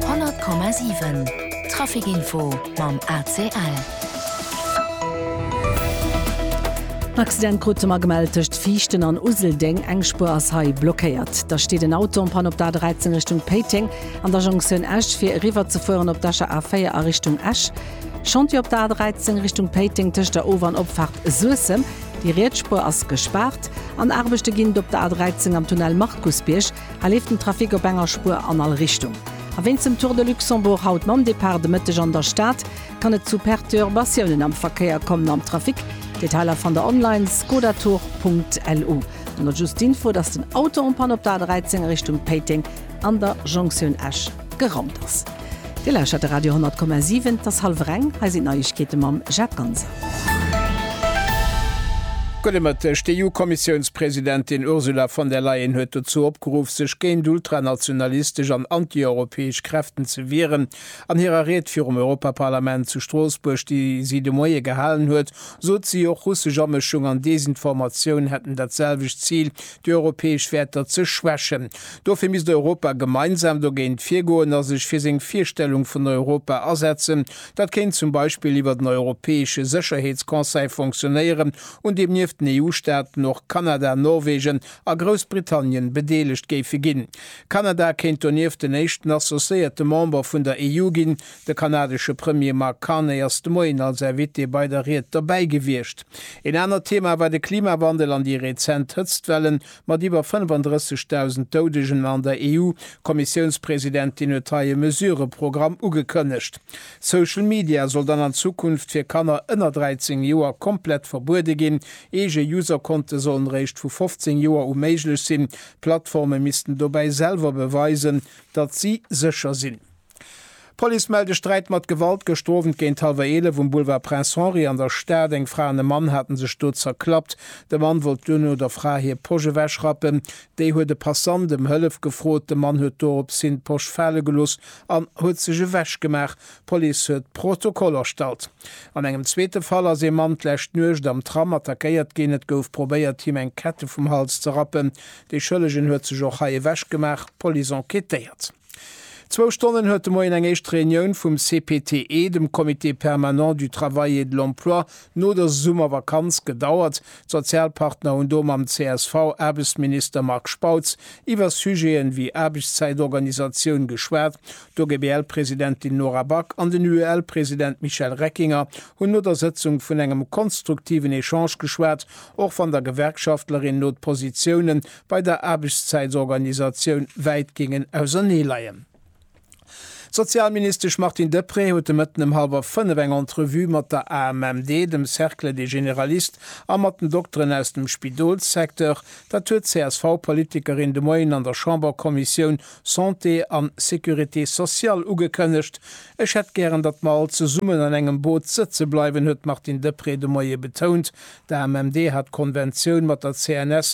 100,7 Trafic Info mam ACL. En Accident krute mer gemellt tëscht Viichten an Useldeng. Eng Spuer ass hei blockéiert. Da steet en Auto en Panne op der A 13 Richtung Péiteng an der Jonktioun Esch, fir eriwwerzefueren op d'Escher A4 a Richtung Esch. Chantier op der A 13 Richtung Péiteng tëscht der Of an Opfaart Suessem. Déi riets Spuer ass gespaart. An Aarbechte ginn et op der A 13 am Tunnel Markusbierg. Hei leeft den Trafic op enger Spuer an all Richtung. A wéinst dem Tour de Luxembourg haut mam Depart de Mëtteg an der Stad, kann et zu Perturbatiounen am Verkéier kommen am Trafic. Detailer fannt der online skodatour.lu. An da just d'Info, dass den Auto en Panne op der A 13 a Richtung Péiteng an der Jonktioun Esch. Geraumt ass. Dir lauschtert de Radio 10,7. Et ass hallwer eng. Hei sinn d'Neiegkeete mam Jacques Ganser. Gutt e Mëtteg. D'EU-Kommissiounspresidentin Ursula von der Leyen huet dozou opgeruff, sech géint ultranationalistesch an antieuropäesch Kräften ze wieren. An hirer Ried virum Europaparlament zu Stroossbuerg, déi si de Moie gehalen huet, sot si och, russesch Amëschung an Desinformatioun hätten dat selwecht Zil déi europäesch Wäerter ze schwächen. Dofir misst Europa gemeinsam dogéint virgoen a sech fir seng Virstellung vun Europa asetzen. Dat kéint zum Beispill iwwert en europäesche Sécherheetsconseil fonctionnéieren, un deem nieft den EU-Staaten och Kanada, Norwegen a Groussbritannien bedeelegt géife ginn. Kanada kéint donieft den éischten associéierte Member vun der EU ginn, De kanadesche Premier Mark Carney ass de Moien als Invité bei der Ried dobäi gewiescht. Een anert Thema war de Klimawandel an déi rezent Hëtztwellen, mat iwwer 35.000 Doudegen an der EU. D'Kommissiounspresidentin huet hei e Mesurëprogramm ugekënnegt. Social Media soll dann an Zukunft fir Kanner ënner 13 Joer komplett verbuede ginn. Eege Userkonte sollen eréischt vu 15 Joer u méiglech sinn. D'Plattforme missten dobäi selwer beweisen, datt si sécher sinn. D'Police mellt e Sträit mat Gewalt gëschter Owend géint hallwer 11 um Boulevard Prince Henri an der Stad. Eng Fra an e Mann hate sech do zerklappt. De Mann wollt duerno der Fra hir Posch ewechrappen. Déi huet e Passant ëm Hëllef gefrot. De Mann huet dorops hin d'Posch fale gelooss an huet sech ewechgemaach. D'Police huet Protokoll erstallt. An engem zweete Fall ass ee Mann d'lescht Nuecht am Tram attackéiert ginn. Et gouf probéiert, him eng Kette vum Hals ze rappen. De Schëllegen huet sech och hei ewechgemaach. D'Police enquêtéiert. Zwou Stonnen huet de Moien eng éischt Reunioun vum CPTE, dem Comité permanent du travail et de l'emploi, no der Summervakanz gedauert. D'Sozialpartner hunn do mam CSV-Aarbechtsminister Marc Spautz iwwer Sujete wéi Aarbechtszäitorganisatioun geschwat. D'OGBL-Presidentin Nora Back an den UEL-President Michel Reckinger hunn no der Sëtzung vun engem konstruktiven Echange geschwat, och wann der Gewerkschaftlerin no d'Positiounen bei der Aarbechtszäitorganisatioun wäit géingen ausernee leien. D'Sozialministesch Martine Deprez huet de Mëtten ëm hallwer fënnef eng Entrevue mat der AMMD, dem Cercle des Généralistes a mat den Dokteren aus dem Spidolssecteur. Dat huet d'CSV-Politikerin de Moien an der Chamberkommissioun Santé an Sécurité sociale ugekënnegt. Ech hätt gären, datt mer all zesummen an engem Boot sëtze bleiwen, huet d'Martine Deprez de Moie betount. D'AMMD hat d'Konventioun mat der CNS